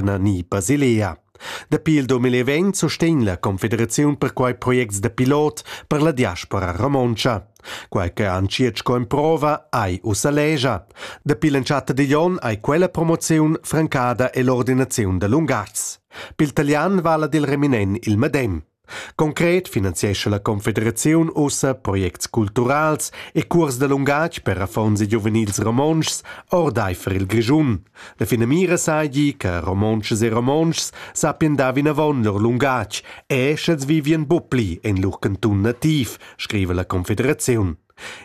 ni Basilea. Dapi il 2020 sustegn la Confederaziun per quei projects da pilot per la diaspora romontscha. Quei che han circ co improva ei ussa legia. Dapi l'entschatta digl onn ei quella promoziun francada ell'ordinaziun da lungatgs. Pil talian vala dil reminen il medem. Concret finanziescha la Confederaziun ussa projects culturals e curs da lungatg per affons e giuvenils romontschs ordeifer il Grischun. La finamira seigi che romontschas e romontschs sappien dar vinavon lur lungatg e sch'els vivien bupli en lur cantun nativ, scriva la Confederaziun.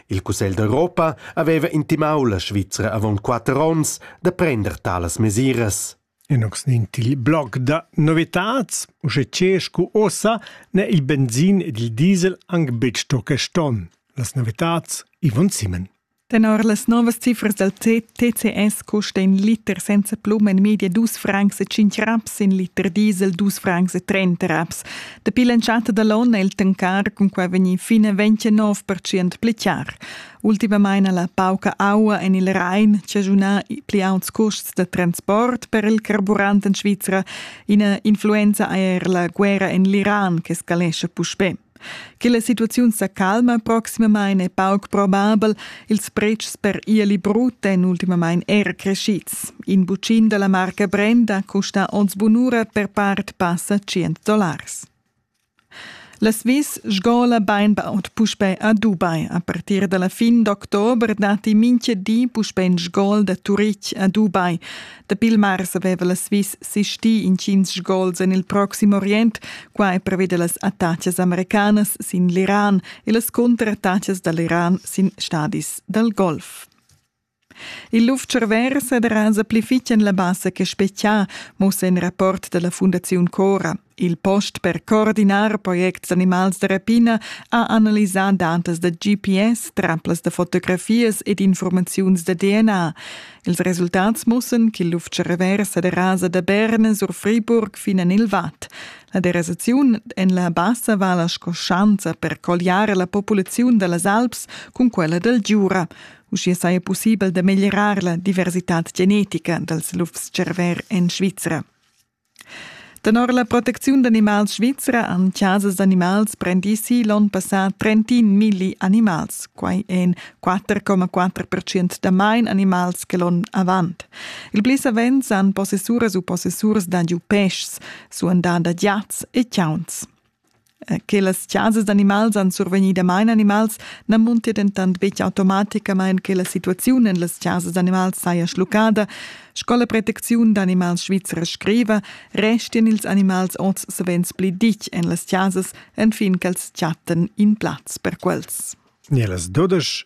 Il Cussegl d'Europa aveva intimau la Svizra avon quatter onns da prender talas mesiras. E nox nin til blog da novitats, usche che scu ossa n'è il benzin ed il diesel anc betg sto quest onn. Las novitats Ivan Simen. Tenor las novas cifras dal TCS custa in liter senza plum en media dus francs e cinc raps, in liter diesel dus francs e trenta raps. Dapi l'entschatta da l'onn è il tancar cun quai vegnì fin a 29% pli char. Ultimamain ha la pauca aua en il Rhein chaschunà pli auts custs da transport per il carburant en Svizra, ina influenza è er la guerra en l'Iran che scalescha puspè. Che la situaziun sa calma proximamain è pauc probabel. Ils pretschs per ieli brut èn ultimamain er crescids. In bucin da la marca Brenda custa oz bunura per part passa 100 dollars. Las vis sgola bainbaud puspè ad Ubai. A partir da la fin d'october datti mintga di puspè in sgol da Turitg ad Ubai. Dapi il mars aveva las vis sistì intgins sgols en il Proxim Orient, quai preveda las attacas americanas sin l'Iran e las cuntrattacas da l'Iran sin stadis dal Golf. Il luf-tscharver sederaza pli fitg en la bassa che spetgà, mussa in rapport dalla Fundaziun Cora. Il post per coordinar projects d'animals da rapina ha analisà datas da GPS, traplas da fotografias ed informaziuns da DNA. Ils resultats mussan ch'il luf-tscharver sederasa da Berna sur Friburg fin en il Vad. La derasaziun en la bassa vala sco schanza per colliare la populaziun da las Alps cun quella dal Giura. Uschia saja pussibel da meglierar la diversitad genetica dals lufs-cerver en Svizra. Tenor la protecziun d'animals svizra han chasas d'animals prendì si l'onn passà 31 milli animals. Quai èn 4,4% da main animals che l'onn avant. Il pli savens han possessuras u possessurs da giu peschs, suandà da giats e chauns. che las chasas d'animals han survegni damain animals, na muntia dentant betg automaticamain che la situaziun en las chasas d'animals saja schluccada. Sco la protecziun d'animals svizra scriva, restian ils animals oz savens pli ditg en las chasas, enfin ch'els chattan in plaz per quels. Ne las dodesch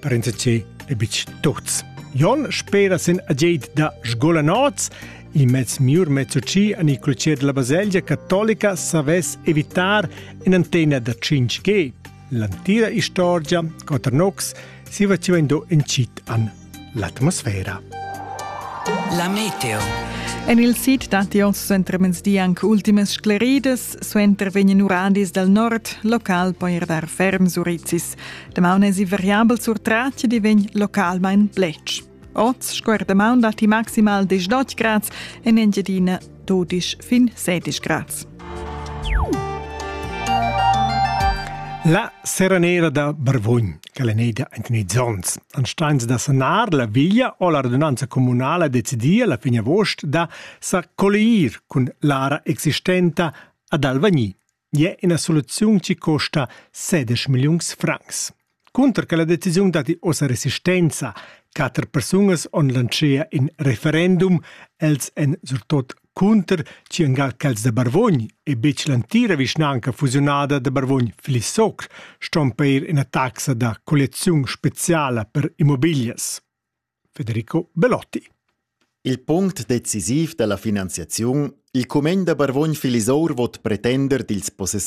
parenza che e bitg tuts. Jon spera sin agied da sgolanots, il mezz miur mezzoci a Nicolacier della Baselgia cattolica savess evitar in antena da 5G. L'antira istorgia, Quater Nox, si faceva indo incit an l'atmosfera. La meteo. En il sid datti oz suenter mezdi anche ultimas scleridas, suenter vegnan uradis dal nord, local poi er dar ferm surizis. Damaun es i variabel sur tratg di vegn localmain blech. Oz sco er damaun datti maximal 10 grads e en Engiadina 12 fin 16 grads. La serenera da Barvogn, che è neida in nei ans, an steins da sanar la viglia o la radunanza comunala decidia la fine agost da sa collier cun l'ara existenta ad Alvagni. è ina soluziun che costa 16 milliuns francs. Cunter che la decisiun datti ossa resistenza, quatter persunas on lancea in referendum, els en surtot cunter ci engal quels de Barvogn e bec l'antira vischnanca fusionada de Barvogn-Flissocr ston peir ina taxa da colleziun speciala per immobilias. Federico Belotti. Il punct decisiv dalla finanziaziun Il cumegn da Barvogn Filisour vot pretender dils possessors